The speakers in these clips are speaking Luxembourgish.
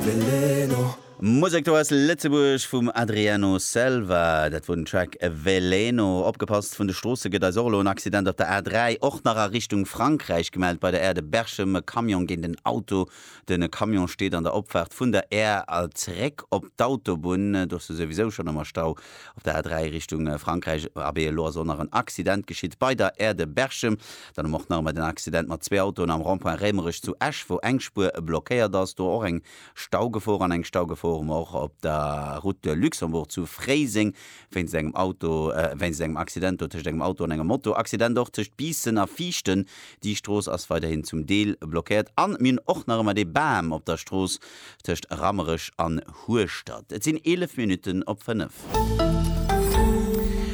Veleno. Musek do aus Lëtzebuerg vum Adriano Selva, dat wor den Track Veleno. Opgepasst vun de Stroosse gëtt eis och elo, en Accident op der A3, och nach a Richtung Frankräich gemellt bei der Aire de Berchem, e Camion géint en Auto. De Camion steet an der Opfaart vun der Aire a zeréck op d'Autobunn, do ass e souwisou schonn am Stau op der A3 Richtung Frankräich. Abee, elo ass och nach en Accident geschitt bei der Aire de Berchem. Dann um och nach emol den Accident mat zwee Autoen am Rond-point Rémerech zu Esch, wou eng Spuer blockéiert ass. Do och eng Staugefor. An eng Staugefor hu mer och op der Route de Luxembourg zu Fréiseng wéinst engem Auto, wéinst engem Accident do tëscht engem Auto an enger Moto. Accident och tëscht Biissen a Viichten. Déi Strooss ass weiderhin zum Deel blockéiert. An mir hunn och nach ëmmer dee Bam op der Strooss tëscht Rammerech an Hueschtert. Et sinn 11 Minutten op 5.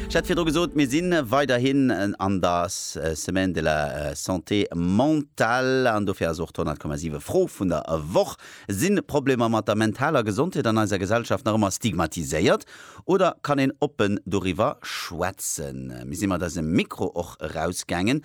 Ech hat virdru gesot, mir si weiderhin an der Semaine de la Santé Mentale an dofir ass och d'Honnertkommasiwe Fro vun der Woch, Si Problemer mat der mentaler Gesondheet an eiser Gesellschaft nach ëmmer stigmatiséiert oder kann een oppen doriwwer schwätzen? Mir si mat eisem Mikro och erausgaangen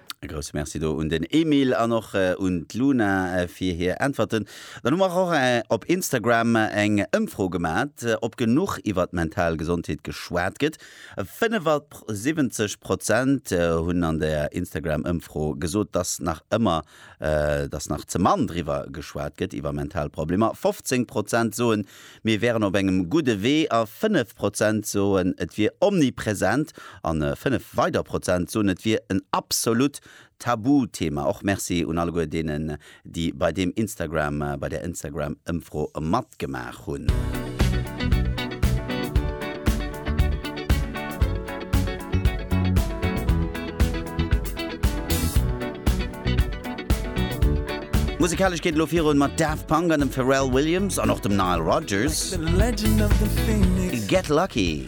E grousse Merci do un den Emile an och un d'Luna fir hir Äntwerten. Dann hu mer och op Instagram eng Ëmfro gemat, ob genuch iwwer d'mental Gesondheet geschwat gëtt. 75 Prozent hunn an der Instagram-Ëmfro gesot, dass nach ëmmer dass nach ze mann driwwer geschwat gëtt, iwwer mental Problemer. 15 Prozent soen, Mir wären op engem gudde Wee a fënnef Prozent soen, et wier omnipresent an fënnef weider Prozent soen, et wier en absolut Tabuthema. Och Merci un alleguer deenen, déi bei deem Instagram, bei där Instagram-Ëmfro matgemaach hunn. Musekalesch geet et elo virun mat Daft Punk an dem Pharrell Williams an och dem Nile Rodgers. Get Lucky.